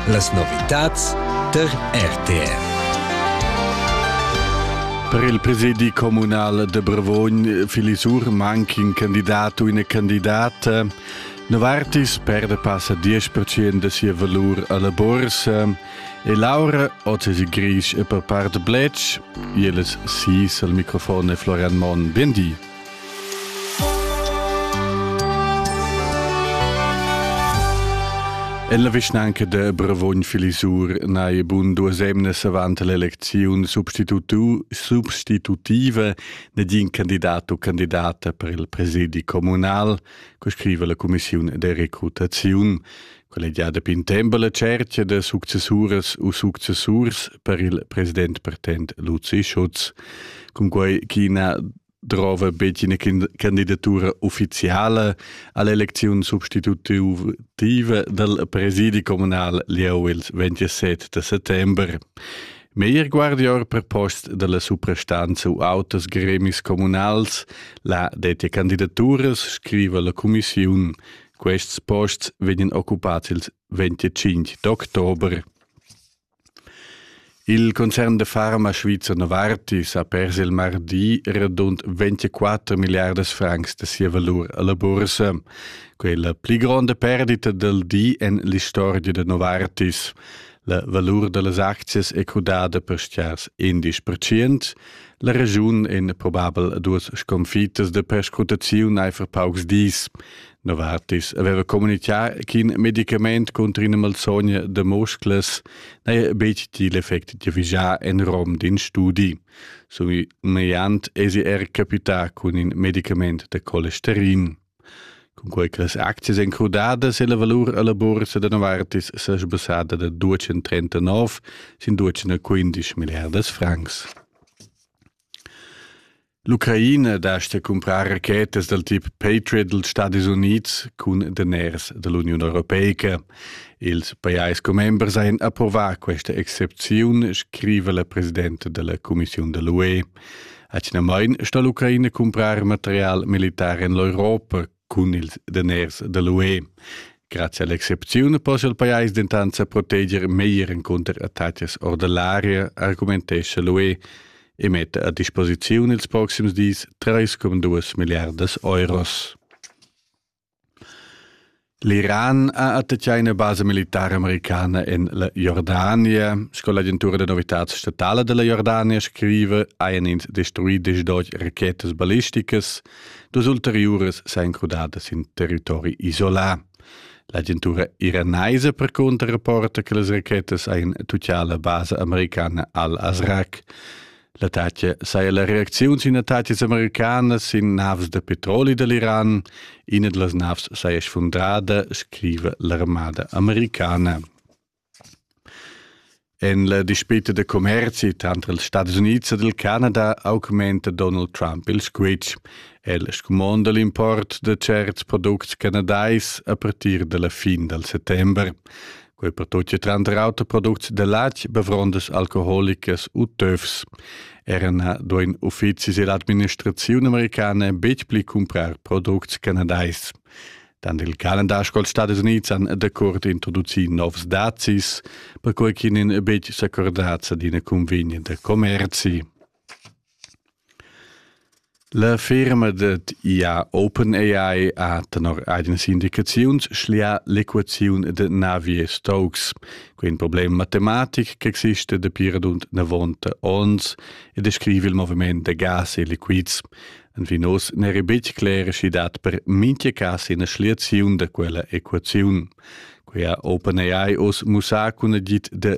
Las novitads tar RTR. Per il presidi communal de Brevogn, Filisur, manca in candidato o una candidata. Novartis perde passa 10% de sia valor alla borsa e Laura, ottesi gris e per part blec, jeles sis al microfon e Florian Mon. Bien di. En la vischnanca de Bravogn Filisur n'hai bun duas emnas avant l'elecziun substitutiva negin candidat u candidata per il presidi communal, co scriva la cumissiun de recrutaziun. Quella è già dapi in tempo la cerchia da successuras u successurs per il president pertent Luzi Schutz, cunquai ch'ina drova betg ina candidatura uffiziala all'elecziun substitutiva dal presidi communal lieu il 27 de settembre. Meir guardior per post dalla suprastanza u autos gremis comunals, la dettia candidaturas, scriva la commissiun, Quests posts vegnan occupats il 25 d'october. Il concern de farma Svizzer Novartis ha pers il mardi radund 24 milliardas francs de sia valur alla bursa, quella pli gronda perdita del di en l'historia de Novartis. La valur dellas aczias è crudada per stiars 10%, La regiun en probabel duas sconfitas de perscrutaziun eifer paucs dis. Novartis aveva communicar ch'in medicament contro ina malsogna de muscles n'è betg il effect di vigiar en rom d'in studi. Somigliant esi er capità cun in medicament de colesterin. Cunquei che las aczias ein crudadas e la valur alla buorsa da Novartis sa sbussada da 239 sin 215 milliardas francs. L'Ucraina dasta cumprar rachetas dal tip Patriot dals Stadis Unids cun daners da l'Uniun Europeica. Ils pajais commembers ein approvà questa excepziun, scriva la presidenta della Commissione dell'UE. Atgnamain sta l'Ucraina cumprar material militar en l'Europa cun ils daners da l'UE. Grazie all'excepzione possa il pajais dentant sa proteger meglier contro attacks or dell'area, argumentescha l'UE e mette a disposizione ils prossimi dis 3,2 miliardas euros. L'Iran ha attachà ina basa militara americana en la Jordania. Sco l'agentura da novitads statala da la Jordania scriva, hajan ins destruì desch rachetas ballisticas. Dus ulteriuras sajan crudadas in territori isolà. L'agentura iranaisa percunter rapporta che las rachetas hajan tuccà la basa americana al-Azraq. L'attacca saja la reacziun sin attacas americanas sin navs da petroli da l'Iran. Ina da las navs saja sfundrada, scriva l'armada americana. En la dispita da commerzi tranter els Stati Unids ed il Canada augmenta Donald Trump il squitsch. El scumonda l'import da certs products canadais a partir da la fin dal settember. Quei pertucci tranter auter products de latg bevrondas alcoholicas u töfs. Era na duein uffizis dell'administrazione americana betg pli cumprar products canadais. Dann il calendar col Stades Units han dacurt introduci novs dazis, per quei ch'in betg s'accordaz ad ina convenienta commerci. La firma dad IA OpenAI ha tenor agens indicaziuns schlià l'equaziun da naviers tocs. Quei è in problem matematic ch'exista dapi radund 90 onns e descrive il moviment da gas e liquids. Anvinos n'eri betg cler sch'i dat per mintga cas ina schliaziun da quella equaziun. Quia OpenAI oz mussà cun agid da